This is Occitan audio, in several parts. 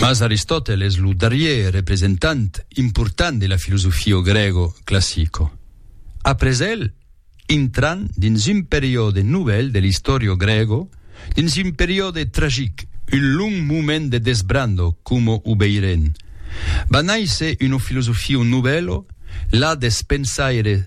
Mas Aristòtel es lo darrier representant important de la filosofio grego classico. Après el, intran dins un periòde novèl de l'istòrio grego, dins un periòde tragic, un long moment de desbrando coma o veirén, va nàisser una filosofio novèlo, la deth pensaire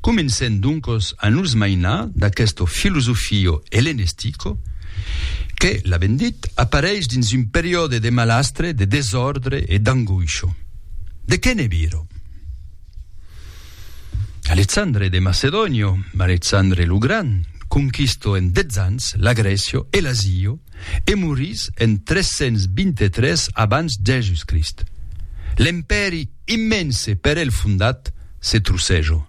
Comencem doncos a nos mainar d'aquesto filosofio hellenestico que, l'avem dit, apareish dins un periòde de malastre, de desòrdre e d'angoisho. De qué ne viro? Alexandre de Macedonio, Alexandre lo Gran, conquisto en 10 ans la Grècio e l'Azio, e morís en 323 abans Jèsus-Crist. L'empèri immense per el fondat se trocejo.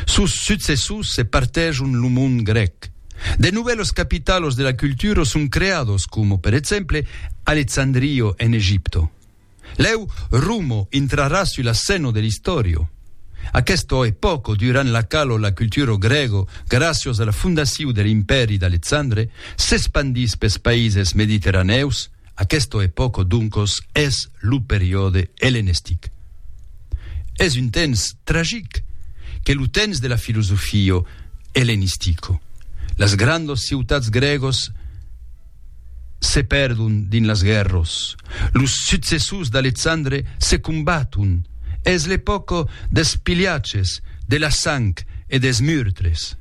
Sos successors se partejon lo mond grèc. De novèlos capitalos de la cultura son creados coma, per exemple, Alexandrio en Egipto. Lèu Rumo intrarà sus la scèna de l'istòrio. Aquesta epòca, durant la quala la cultura grèga, gràcias a la fondaciu de l'impèri d'Alexandre, s'espandís pes païses mediterranèus, aquesta epòca doncas es lo periòde ellenestic. Es un temps tragic qu'es lo temps de la filosofia ellenistica. Las grandas ciutats grègas Se perdon dins las guèrros. Los successors d'Alexandre se combaton. Es l'epòca dels pilhatges, de la sang e dels murtres.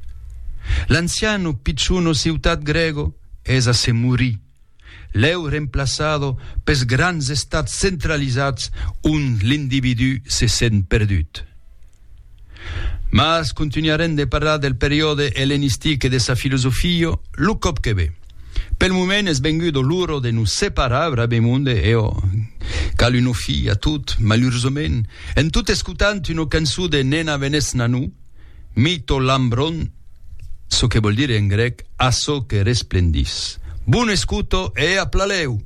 L'ancian o pichon o ciutat grègo es a se morir. Lèu remplaçada pels grands estats centralizats ont l'individú se sent perdut. Mas contunharem de parlar del periòde ellenistic e de sa filosofia lo còp que ve. Pel moment es venguda l'ora de nos separar brabèmond e ò, cal una fi a tot, malursament, en tot escotant una cançon de Nena Venesnanu, Mi to lambron, çò que vòl dire en grèc, Açò que resplendís. Bona escota e a Plalèu!